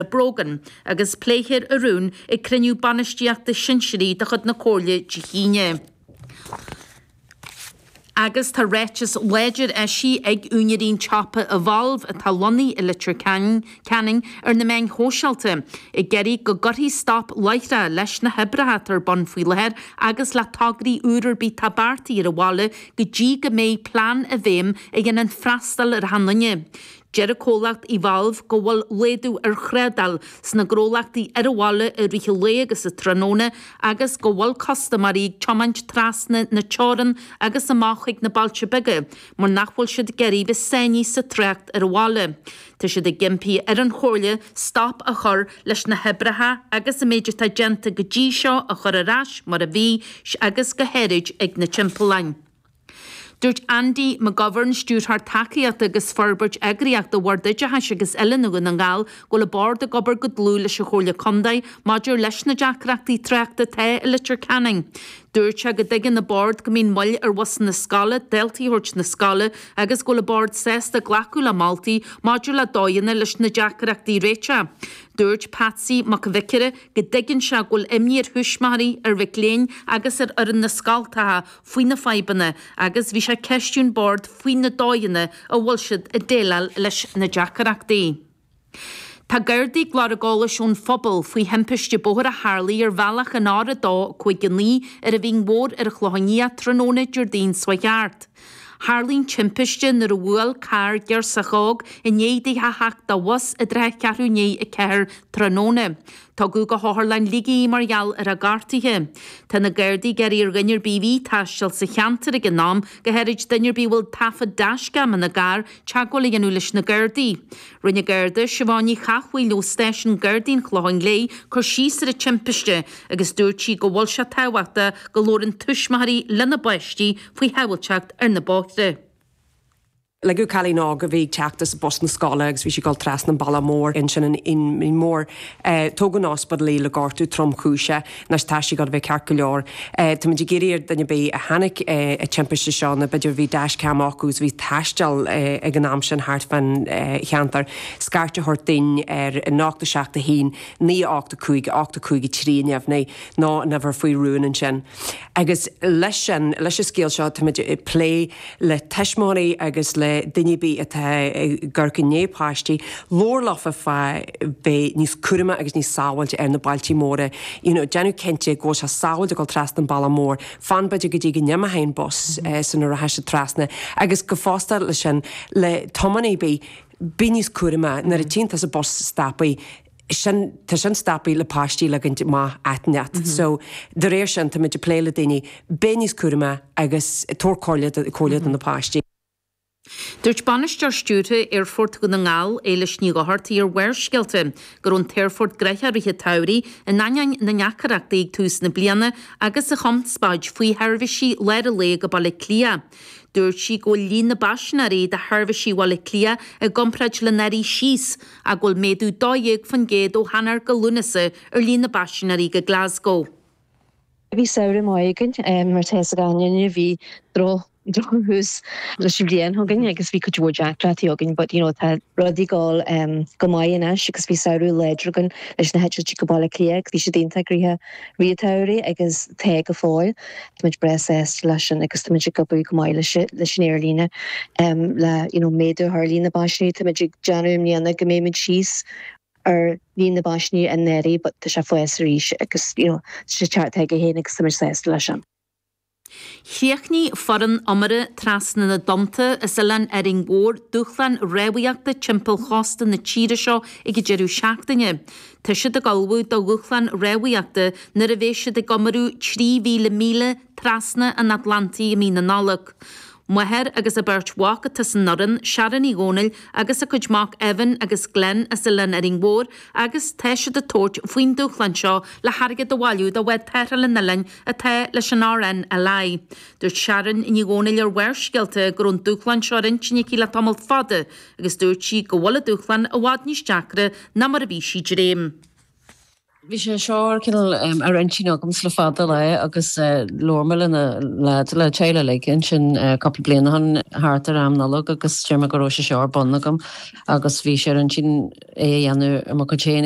Brogan, agus pléifear an rún ag cruinniú bainistíochta sinsearaí de chuid na Comhairle Dé hAoine. Agus tá ráiteas láidir eisithe ag úinéirí an tsiopa Evolve, atá lonnaithe i Leitir Ceanainn, ar na meáin shóisialta ag iarraidh go gcuirfí stop láithreach leis na hoibreacha atá ar bun faoi láthair agus le tograí úra ar bith atá beartaithe ar an bhaile go dtí go mbeidh plean i bhfeidhm a dhéanann freastal ar achan duine. Deir an comhlacht Evolve go bhfuil laghdú ar thrádáil sna gnólachtaí ar an bhaile i rith an lae agus sa tráthnóna agus go bhfuil custaiméirí ag tiomáint trasna na teorann agus amach chuig na bailte beaga mar nach bhfuil siad ag iarraidh bheith sáinnithe sa trácht ar an bhaile. Tá siad ag impí ar an Chomhairle stop a chur leis na hoibreacha agus an méid atá déanta go dtí seo a chur ar ais mar a bhí agus go háirid ag na timpealláin. Dúirt Andy McGovern, Stiúrthóir Tacaíochta agus Forbairt Eagraíochta Bhord Oideachais agus Oiliúna Dhún na nGall, go bhfuil an Bord ag obair go dlúth leis an Chomhairle Contae maidir leis na deacrachtaí tráchta atá i Leitir Ceanainn. Dúirt sé go dtuigeann an Bord go mbíonn moill ar bhusanna scoile daltaí a thabhairt 'na scoile agus go bhfuil an Bord sásta glacadh le moltaí maidir le dóigheanna leis na deacrachtaí a réiteach. Dúirt Patsy Mac an Bhiocáire go dtuigeann sé go bhfuil imní ar thuismitheoirí, ar mhic léinn agus ar fhoireann na scoltacha faoi na fadhbanna agus bhí sé ag ceistiú an Bhoird faoi na dóigheanna a bhfuil siad ag déileáil leis na deacrachtaí. Tá gardaí ag lorg eolais ón phobal faoi thimpiste bóthair a tharlaigh ar bhealach an R259 ar an Mhín Mhór ar an Chlochán Liath tráthnóna Déardaoin seo thart. Tharlaigh an timpiste nuair a bhuail carr giorrsach óg i ndiaidh di a theacht de bhus i dtrátha cheathrú i ndiaidh a ceathair tráthnóna. Tugadh go hOtharlann Ligigh í mar gheall ar a gortuithe. Tá na Gardaí ag iarraidh ar dhuine ar bith a bhí ag taisteal sa cheantar ag an am, go háirid duine ar bith a bhfuil taifead dash-cam ina gcarr teagmháil a dhéanamh leis na Gardaí. Rinne Garda, Siobhán Ní Chathmhaoil ó Stáisiún Gardaí an Chlocháin Léith, cur síos ar an timpiste agus dúirt sí go bhfuil sé tábhachtach go labhrann tuismitheoirí lena bpáistí faoi shábháilteacht ar na bóithre. Leagadh cailín óg a bhí ag teacht as bus na scoile agus bhí sí ag dul trasna an bhealaigh mhóir insa Mhín Mhór. Tógadh chun ospidéil í le gortú tromchúiseach. Anois tá sí ag gabháil a bheith ceart go leor. Táimid ag iarraidh ar duine ar bith a chonaic an timpiste seo nó b'fhéidir bhí dash-cam acu agus a bhí ag taisteal ag an am sin thart fán cheantar, scairt a thabhairt duinn ar 871 985 8513 nó an uimhir faoi rún ansin. Agus leis sin, leis an scéal seo, táimid ag plé. le tuismitheoirí agus le duine ar bith atá ag tabhairt aire do páistí, labhair leo fá dtaobh de bheith níos cúramaí agus níos sábháilte ar na bealtaí móra, you know, déanamh cinnte go bhfuil sé sábháilte ag dul trasna an bealach mór, fan b'fhéidir go dtí go n-imeochaidh an bus sula rachaidh siad trasna, agus go fosta leis sin, le tiománaí ar bith, bheith níos cúramaí, nuair a tchíonn tusa bus stopaí. sin, tá sin stopaí le páistí ligint amach ag eiteogaí. So, de réir sin, táimid ag plé le daoine, bheith níos cúramaí agus tabhairt comhairle do, comhairle do na páistí. Dúirt Bainisteoir Stiúrtha Aerfort Dhún na nGall, Éilis Ní Dhochartaigh ar Bharrscéalta go raibh an t-aerfort gnoitheach i rith an tsamhraidh in ainneoin na ndeacaireactaí ag tús na bliana agus an chonspóid faoi sheirbhísí lár an lae go Baile Átha Cliath. Dúirt sí go bhfuil líon na bpaisinéirí do sheirbhísí Bhaile Átha Cliath i gcomparáid le anuraidh síos, ach go bhfuil méadú 12 faoin gcéad ó Eanáir go Lúnasa ar líon na bpaisinéirí go Glasgow. Bhí samhradh maith againn mar tá fhios ag achan duine bhí drochthús leis an bhliain againn agus bhí cuid mhór deacrachtaí againn but you know tá rudaí ag dul go maith anois agus bhí samhradh láidir againn leis na heitiltí go Baile Átha Cliath agus bhí siad iontach gnoitheach i rith an tsamhraidh agus tá go fóill. Táimid breá sásta leis sin agus táimid ag obair go maith leis an aerlíne le you know méadú a chur ar líon na bpaisinéirí. Táimid ag dréim i mbliana go mbeimid síos ar líon na bpaisinéirí anuraidh but tá sé ag fás arís agus you know tá sé ag teacht chuige féin agus táimid sásta leis sin. Chríochnaigh foireann iomartha Trasna na dTonnta as Oileán Árainn Mhór dúshlán rámhaíochta timpeall chósta na tíre seo ag an deireadh seachtaine. Tá siad ag ullmhú do dhúshlán rámhaíochta nuair a bheas siad ag iomramh 3,000 míle trasna an Atlantaigh i mí na Nollag. Máthair agus a beirt mhac atá san fhoireann, Sharon Ní Dhomhnaill agus a cuid mac Evan agus Glen as Oileán Árainn Mhór agus tá siad ag tabhairt faoin dúshlán seo le hairgead a bhailiú do Bhád Tarrthála an Oileáin atá leis an RNLI. Dúirt Sharon Ní Dhomhnaill ar Bharrscéalta go raibh an dúshlán seo ar intinn aici le tamall fada agus dúirt sí go bhfuil an dúshlán i bhfad níos deacra ná mar a bhí sí ag dréim. Bhí sé seo cineál ar intinn agamsa le fada lá agus labhair mé le na leaids, le teaghlach uilig ansin cúpla bliain ó shin thart ar am Nollag agus deir mé go raibh sé seo ar bun agam agus bhí sé ar intinn é a dhéanamh ar mo chuid féin.